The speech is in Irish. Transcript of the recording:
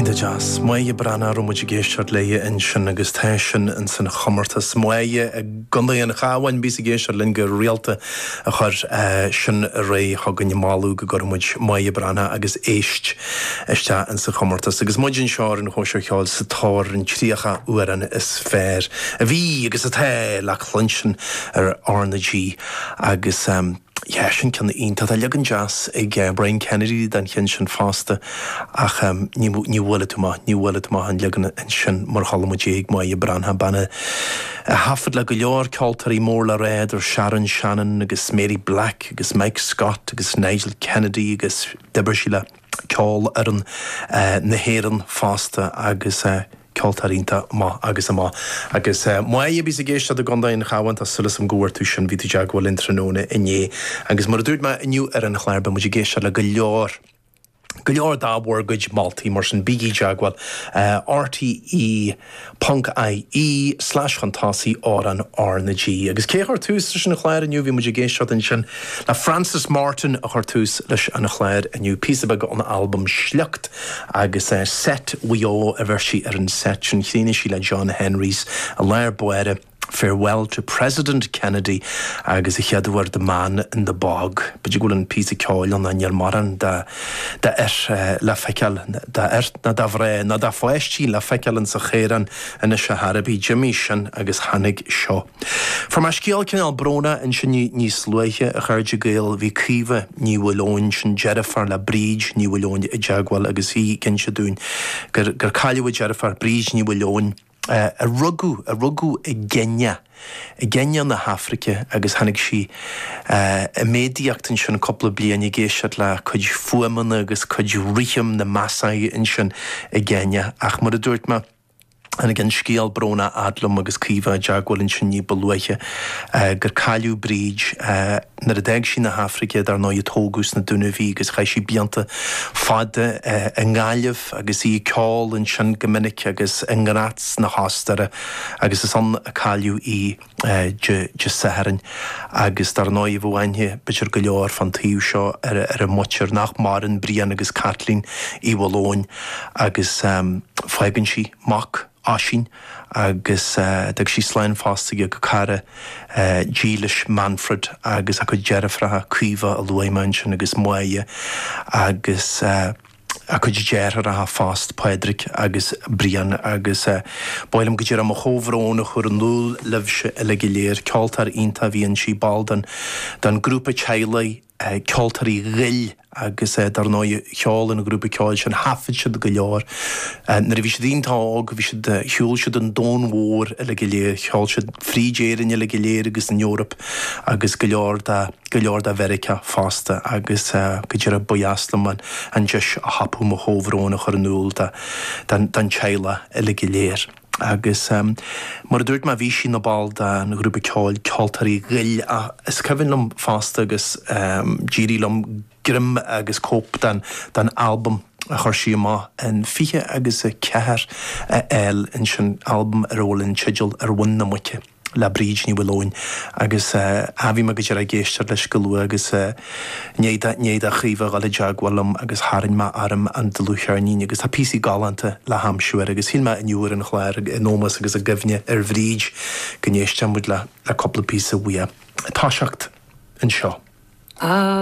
Iontach deas. Máire Breatnach a raibh muid ag éisteacht léi ansin agus tá sin ins an chomórtas. Máire i gContae an Chabháin, bhíos ag éisteacht linn go rialta a chuir sin aréir chugainn, moladh go gcuirfeadh muid Máire Breatnach agus Éist isteach ins an chomórtas. Agus muid anseo ar an Chóisir Cheoil sa tóir ar an 30 amhrán is fearr a bhí agus atá le cluinstin ar R na G. Agus. Yeah, sin ceann iontach. Tá leagan deas ag Brian Kennedy den cheann sin fosta ach ní bhuailfidh tú amach, ní bhuailfidh tú amach an leagan sin mar chuala muid é ag Máire Breatnach, bean a thaifead le go leor ceoltóirí mór le rá idir Sharon Shannon agus Mary Black agus Mike Scott agus Nigel Kennedy agus d'oibir sí le Ceolfhoireann na hÉireann fosta agus eh. Ceoltóir iontach, amach agus amach. Agus Máire a bhíos ag éisteacht i gContae an Chabháin, tá súil agam go bhfuair tú sin, bhí tú i dteagmháil linn tráthnóna inné. Agus mar a dúirt mé inniu ar an chlár, beidh muid ag éisteacht le go leor, go leor dá bhur gcuid moltaí, mar sin bígí i dteagmháil, rte ponc IE slash chun tosaigh amhrán R na G. Agus cé a chuir tús leis an chlár inniu, bhí muid ag éisteacht ansin le Frances Morton a chuir tús leis an chlár inniu, píosa beag ón albam Sliocht. agus seit Mhaigh Eo a bheir sí ar an seit sin. Chríochnaigh sí le John Henrys i lár báire, Farewell to President Kennedy agus a chéad uair The Man in the Bog. B'fhéidir go bhfuil an píosa ceoil ann ná níl mórán d'fhear le feiceáil, d'fhear ná de mhná ná de pháistí le feiceáil insa chaorán anois ar chor ar bith. D'imigh sin agus tháinig seo. Fuair mé scéal cineál brónach ansin níos luaithe, a chairde Gael, bhí Caoimhe Ní Mhaoileoin, sin deirfiúr le Bríd Ní Mhaoileoin, i dteagmháil agus í ag inse dúinn gur gur cailleadh a deirfiúr, Bríd Ní Mhaoileoin, a rugadh a rugadh i gCéinia, i gCéinia na hAfraice agus tháinig sí i méadaíocht ansin cúpla bliain ag éisteacht le cuid fuaimeanna agus cuid rithim na Maasai ansin i gCéinia ach mar a dúirt mé, Tháinig an scéal brónach fhad liom agus Caoimhe i dteagmháil ansin ní ba luaithe gur cailleadh Bríd. Nuair a d'fhág sí na hAfraice, dar ndóigh, tógadh sna Dúnaibh í agus chaith sí blianta fada i nGaillimh agus í ag ceol ansin go minic agus i nGraz na hOstaire agus is ann a cailleadh í. Dé Sathairn agus dar ndóigh bheadh aithne b'fhéidir go leor fán taobh seo ar a muintir nach maireann, Brian agus Caitlín Uí Mhaoileoin agus fágann sí mac, Oisín, agus d'fhág sí slán fosta ag a cara dílis, Manfred, agus a cuid deirfiúracha, Caoimhe a luaigh mé ansin agus Máire agus. a cuid deartháireacha fosta, Pádraig agus Brian, agus ba mhaith liom go díreach mo chomhbhrón a chur in iúl libhse uilig go léir. Ceoltóir iontach a bhí inti, ball den den grúpa teaghlaigh Ceoltóirí Ghoill agus dar ndóigh cheol an ghrúpa ceoil sin, thaifead siad go leor nuair a bhí siad iontach óg, bhí siad, shiúil siad an domhan mhór uilig go léir, cheol siad fríd Éirinn uilig go léir agus an Eoraip agus go leor dá. go leor de Mheiriceá fosta agus go díreach ba dheas liom an deis a thapú mo chomhbhrón a chur in iúl don teaghlach uilig go léir. Agus mar a dúirt mé bhí sí ina ball den ghrúpa ceoil Ceoltóirí Ghoill ach is cuimhin liom fosta agus d'éirigh liom, greim agus cóip den albam a chuir sí amach in 20 agus 4 a fháil ansin, albam ar a bhfuil an teideal Ar Mhuin na Muice le Bríd Ní Mhaoileoin. Agus a bhí mé go díreach ag éisteacht leis chomh luath agus i ndiaidh do, i ndiaidh do Chaoimhe a dhul i dteagmháil liom agus tharraing mé orm an dlúthcheirnín agus tá píosaí galánta le haimsiú air agus shíl mé inniu ar an chlár in ómós agus i gcuimhne ar Bhríd go n-éistfeadh muid le cúpla píosa uaidh. Ag toiseacht anseo.